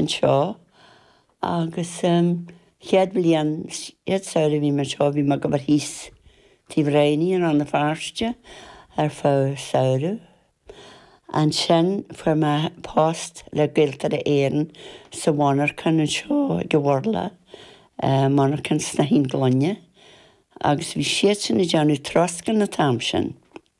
anseo agus chéad bhliain, chéad saoire a bhí mé anseo bhí mé ag obair thíos taobh Rainey i Rann na Feirste ar feadh samhraidh. Ansin fuair mé post le Gaeltarra Éireann sa mhonarchan anseo ag an Mhurlach, monarchan snáithín gloine, agus bhí siadsan ag déanamh troscán an t-am sin.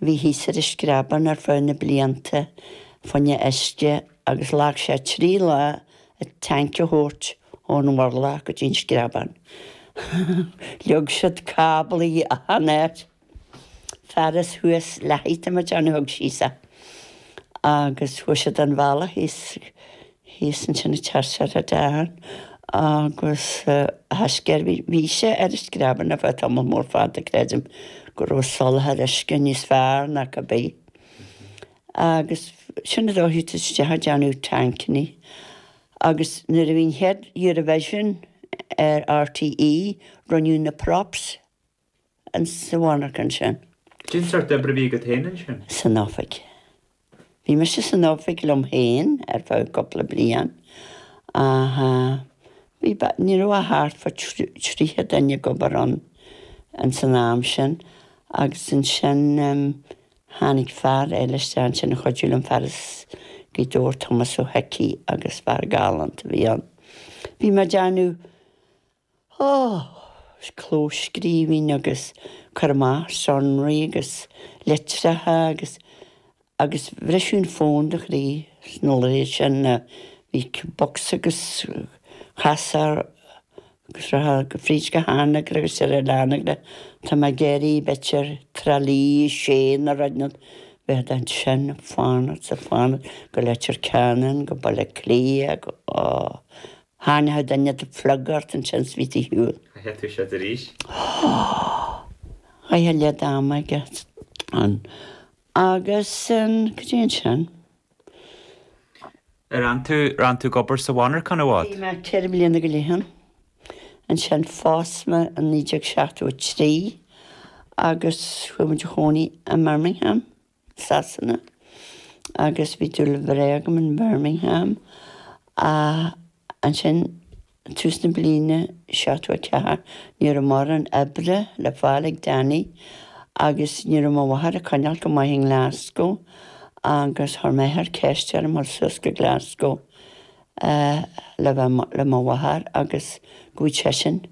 a bhí thíos ar an Screabán ar feadh na blianta fá choinne uisce agus ghlac sé trí lá an tanc a thabhairt ón Mhurlach go dtí an Screabán. Leag siad cáblaí achan áit, fear as thuas leath-height a muid ann a thug síos é agus fuair siad a mbealach thíos Thíos ansin a tear sé a dhearn agus a thaisce air. Bhí sé ar an Screabán ar feadh tamaill mhóir fada, creidim go raibh an soláthar uisce níos fearr ná cad é. Agus sin an dóigh a thoisigh siad ag déanamh tancannaí. Agus nuair a bhí an chéad Eurovision ar RTÉ, rinneadh na props. insa mhonarchan sin. Cén sórt oibre a bhí agat féin ansin? san oifig. Bhí mise san oifig liom féin ar feadh cúpla bliain ach bhí, ní raibh ach thart fá thríocha duine ag obair ann ins an am sin agus ansin tháinig fear eile isteach ansin a chuidiú liom, fear as Gaoth Dobhair, Tomás Ó hIcí agus fear galánta a bhí ann. Bhí mé ag déanamh. Ó clóscríobh agus cur amach sonraí agus litreacha agus agus oibriú an fón a chroí sna laethanta sin a bhí bocsa agus chasfá thú fríd go hAnagaire agus Hello Anagaire. Tá mé ag iarraidh Better Tralaí a sé nó rud bheifeá ansin fanacht is ag fanacht go Leitir Ceanainn, go Baile Átha Cliath, go Tharraingeodh duine an plug ort ansin is bhí tú ar shiúl. Chaithfeá toiseacht arís. Chaith a leath ama aige ann. Agus cad é ansin. Ar fhan tú, ar fhan tú ag obair sa mhonarchan i bhfad? Bhí mé ceithre bliana go leith ann. Ansin phós mé i 1973 agus chuaigh muid a chónaí i mBirmingham. Sasana, agus bhí dúil bhreá agam in Birmingham, ach ansin, ag tús na bliana 74, ní raibh mórán oibre le fáil ag Danny, agus ní raibh mo mháthair ag coinneáil go maith i nGlasgow, agus chuir m'athair ceist orm dhul suas go Glasgow le bheith le mo mháthair, agus go bhfaigheadh seisean.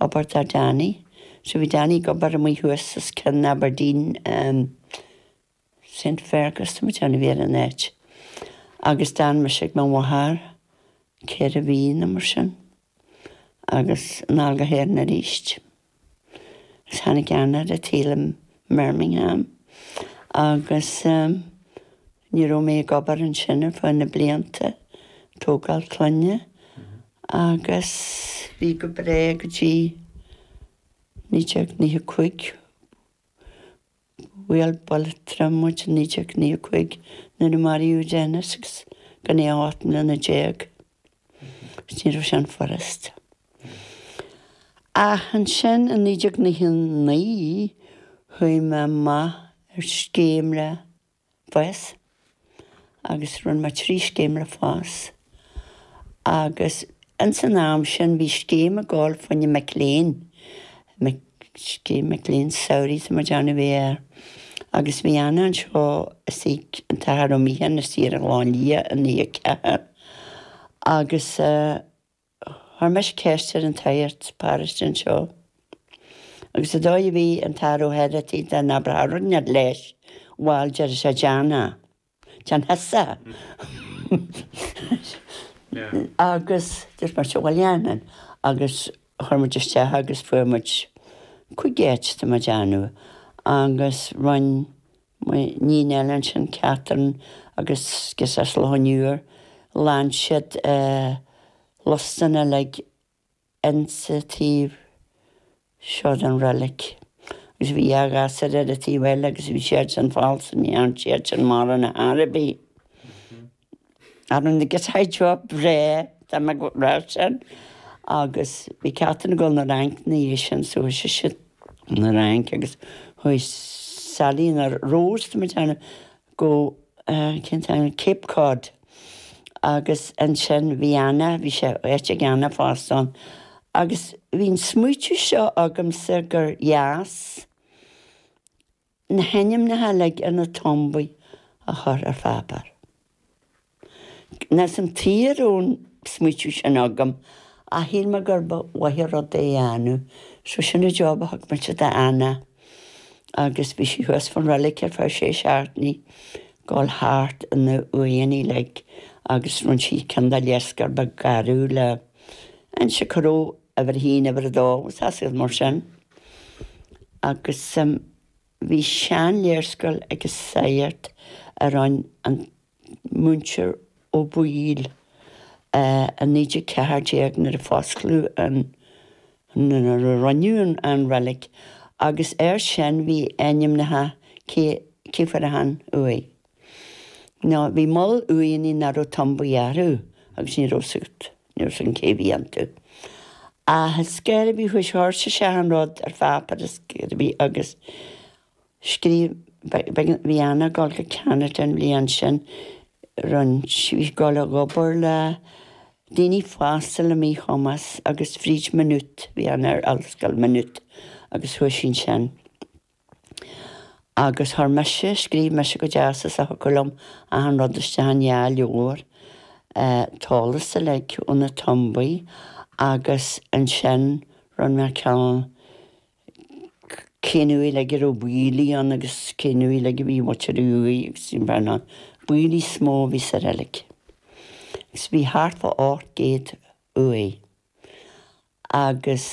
obair dar Danny. So bhí Danny ag obair amuigh thuas os cionn Aberdeen, ehm, Saint Fergus, tá mé ag déanamh, a bhí ar an áit. Agus d'fhan mise ag mo mháthair ceithre mhí nó mar sin agus anall go hÉirinn aríst. Is tháinig Ciarán ar an tsaol i mBirmingham agus, ehm, ní raibh mé ag obair ansin ar feadh na blianta, tógáil clainne agus bhí go breá go dtí 1995, bhuail buille trom muid i 1995 nuair a maraíodh Dennis agus gan é ach ocht mbliana déag, agus ní raibh sin furast. Ach ansin i 1999 chuaigh mé amach ar scéim le. FÁS, agus rinne mé trí scéim le FÁS. Agus ins an am sin bhí scéim ag dul fá choinne mic léinn, mic, scéim mic léinn samhraidh tá mé ag déanamh a bhí air. Agus bhí Anna anseo is í, an tAthair Ó Michean is í ar an Ghleann Liath in Uí Aiceathair agus eh, Chuir mise ceist ar an tsagart paróiste anseo agus an dóigh a bhí an tAthair Ó hOireachtaigh dá n-abróchá rud leis, bhail deir sé déan é, déan thusa é agus dúirt mise bhuel dhéanfainn agus chuir muid isteach agus fuair muid cúigear tá mé ag déanamh agus rinne M'iníon eile ansin, Catherine agus girseach as Loch an Iúir, ghlan siad lustan uilig insa taobh seo den reilig. Agus bhí dhá ghasúr ar an taobh eile agus bhí siad sin falsa, ní thearn siad sin mórán ar bith. Ar an gcéad saighdeoir breá dá mbeadh raibh sé ann agus bhí Catherine ag dul 'na Fhrainc 'na dhiaidh sin. So chuaigh sise 'na Fhrainc agus chuaigh Selina Rose, tá mé ag déanamh, go, cén t-ainm, Cape Cod. Agus ansin bhí Anna, bhí sé, áit ag Anna fosta ann. Agus bhí an smaoitiú seo agamsa gur dheas, na hainmneacha uilig ar na tombaí a chur ar pháipéar. Níl a fhios agam tuige a raibh an smaoitiú sin agam, ach shíl mé gur mhaith an rud é a dhéanamh, so sin an job a thug mise d'Anna, agus bhí sí thuas fán reilig ar feadh sé seachtainí, ag dul thart na huaigheanna uilig, agus rinne sí cineál de léarscáil beag garbh le hinse cá raibh uimhir a haon, uimhir a dó agus as iad mar sin. Agus bhí seanléarscáil ag an sagart a rinn an Múinteoir Ó Baoill i 1914 nuair a fosclaíodh an, nuair a roinneadh an reilig, agus air sin bhí ainmneacha, cé, cé fuair achan uaigh? Nó bhí moll uaigheanna nach raibh tumbaí orthu, agus ní raibh a fhios agat, ní raibh a fhios againn cé bhí iontu, ach scéal a bhí faoi shár sa sean rud ar pháipéar is ar bith agus scríobh, b'éigean, bhí Anna ag gabháil go Ceanada an bhliain sin roinnt, bhí sí ag gabháil ag obair le daoine fásta le míchumas agus fríd Maynooth, bhí Anna ar ollscoil Maynooth agus chuaigh sí ansin. Agus chuir mise, scríobh mise go deas is a thiocfadh liom achan rud isteach in dhá leabhar, an t-eolas uilig ó na tumbaí agus ansin rinne mé ceann cén uaigh uilig a raibh Baoilligh ann agus cén uaigh uilig a bhí muintir Uí Bhriain ann. Baoilligh is mó a bhí sa reilig. Agus bhí thart fá 800 uaigh. agus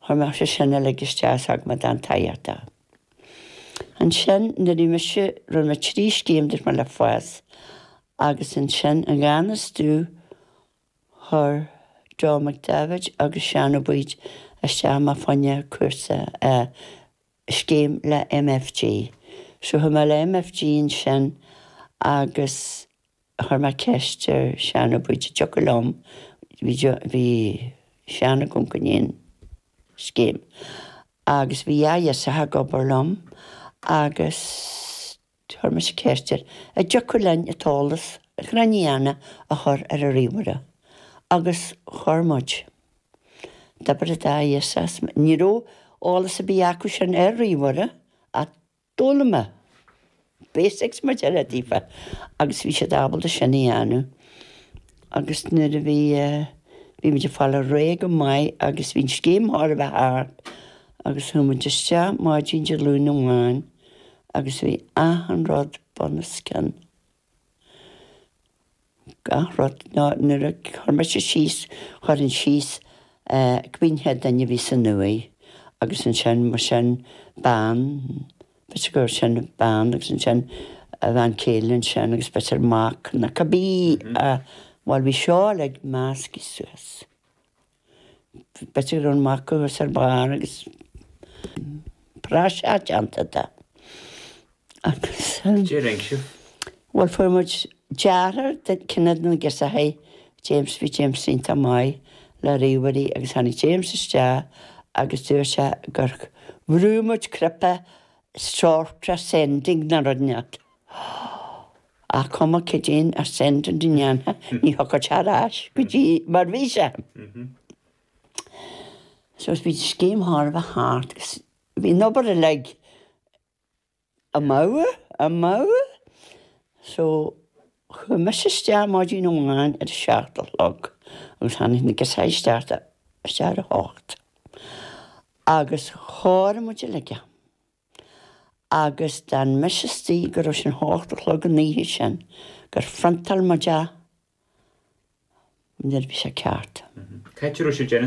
chuir mé sé sin uilig isteach sa agma dan taiochta. Ansin, nuair a bhí mise, rinn mé trí scéim duit mé le FÁS, agus ansin i ngan fhios domh chuir Joe McDevitt agus Seánaí Boyd isteach mé fá choinne cúrsa a scéim le MFG. So chuaigh mé le MFG ansin agus a chuir mé ceist ar Sheánaí Boyd an dtiocfadh liom, bhí Seánaí ag amharc i ndiaidh an scéim agus bhí dhá ghirseach ag obair liom agus chuir mise ceist air an dtiocfadh linn an t-eolas ar na huaigheanna a chur ar an ríomhaire agus chuaigh muid a dh'obair, an dá ghirseach agus, ní raibh eolas ar bith acu sin ar ríomhaire ach D'fhoghlaim mé basics mar deir siad daofa agus bhí siad ábalta sin a dhéanamh agus nuair a bhí, bhí muid ag fáil ar aghaidh go maith agus bhí an scéim chóir a bheith thart agus chuaigh muid isteach maidin Dé Luain amháin agus bhí achan rud bun os cionn. Gach rud, nó nuair a chuir mise síos, chuirfinn síos cibé duine a bhí san uaigh agus ansin mar sin bean, b'fhéidir go raibh sin bean agus ansin a bhean chéile ansin agus b'fhéidir mac nó cibé, bhuel bhí seo uilig measctha suas. B'ait go raibh an mac thuas ar barr agus praiseach déanta de agus. Bhuel fuair muid deartháir de chionn de na girseachaí, James, bhí James iontach maith le ríomhairí agus tháinig James isteach agus dúirt sé gur bhrú muid cnaipe sort ascending nó rud éigin. Ach cuma caidé an ascending a dhéanfá, ní thiocfadh sé ar ais go dtí mar a bhí sé. So, bhí an scéim thar a bheith ceart agus bhí an obair uilig amú, amú. So, chuaigh mise isteach maidin amháin ar a seacht a chlog agus tháinig na girseachaí isteach, isteach ar a hocht agus chóirigh muid uilig é. agus d'fhan mise istigh go raibh sé a hocht a chlog an oíche sin gur phriontáil muid é nuair a bhí sé ceart. Cé a raibh sé ag déanamh é?